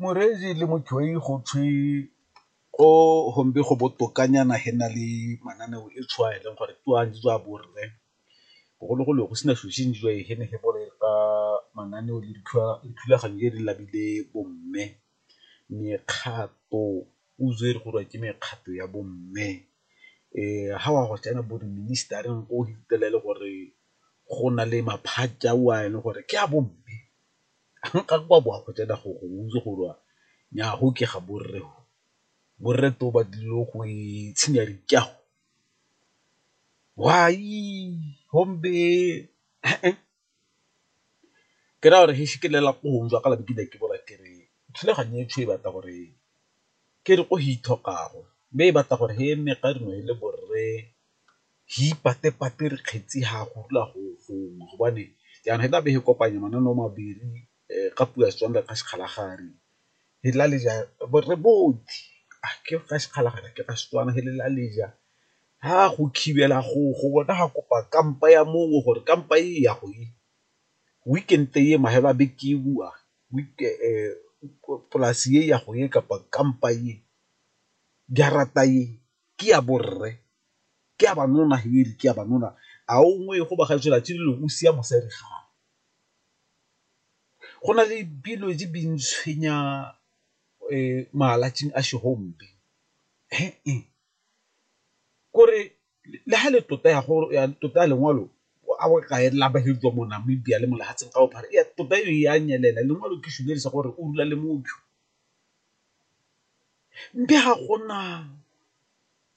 Moreetsi le motšhwai go tshwe ko gombe go botokanyana ge na le mananeo e tshwana eleng gore ke a ntswa bo rre, bogologolo go sena selo se ntswa e ge ne ge bole ka mananeo le dithulaganyo tse di labile bo mme mekgato o itse e re gore ke mekgato ya bo mme. ga o a go tsena bo di-minister-reng o fitlhela e le gore go na le maphatša ao a e leng gore ke a bo mme, ga o a bo wa go tsena gore o itse gore wa nnyaa go ke ga borre go, borre twe ba tlile go itshinya dikago, why gombe . ke raya gore ke le lapong jwa ka la bo ke ne ke bola ke re thulaganyo e e batla gore ke re ko go ithokago, mme e batla gore e nne ka nngwe e le borre re ipate-pate re kgetsi ha go rula go gongwe gobane jaanong e tla be e kopanya mananeo mabedi ka puo ya Setswana re re ga sekgala ga a rue, he lela le ja re botse a ke ga sekgala kana ke ga Setswana he lela le ja, ha go khibela go go bona ga kopa kampa ya mongwe gore kampa e ya go e, weekend e mafelo a beke e bowa polase e ya go e kapa kampa e, jarata e ke ya borre, ke ya banna he e re ke ya banna, a o nngwe go ba ga e tshela tse dingwe o sia mosadi gaabo. Go na le dilo tse di ntshwenya malatsing a kore le ha le tota ya gore ya tota ya lengwalo a o kae la tswa mo Namibia le mo lefatsheng ka bophara ya tota e a nyelela lengwalo ke selo sa gore o rula le motho, mme ga gona.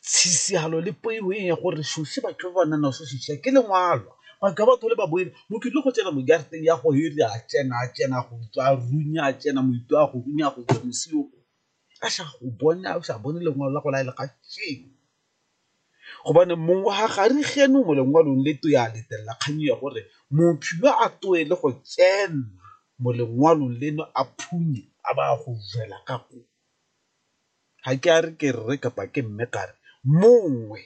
Tshisihalo le poiho e ya gore Shoshi batho ba ba nang naso Shoshi ke lengwalwa. Batho ba batho le ba boele mo ke tlo go tsena mo jarateng ya go hele a tsena a tsena go tswa a runya a tsena moito a go runya go tswa mosio a sa go bone a sa bone lengwalo la go laela ga sheng. Gobane mong wa ga re geno mo lengwalong le to ya letella kgang ya gore motho yo a towe le go tsena mo lengwalong leno a phunye a ba a go jela ka koo. Ga ke a re ke rre kapa ke mme ga re mongwe.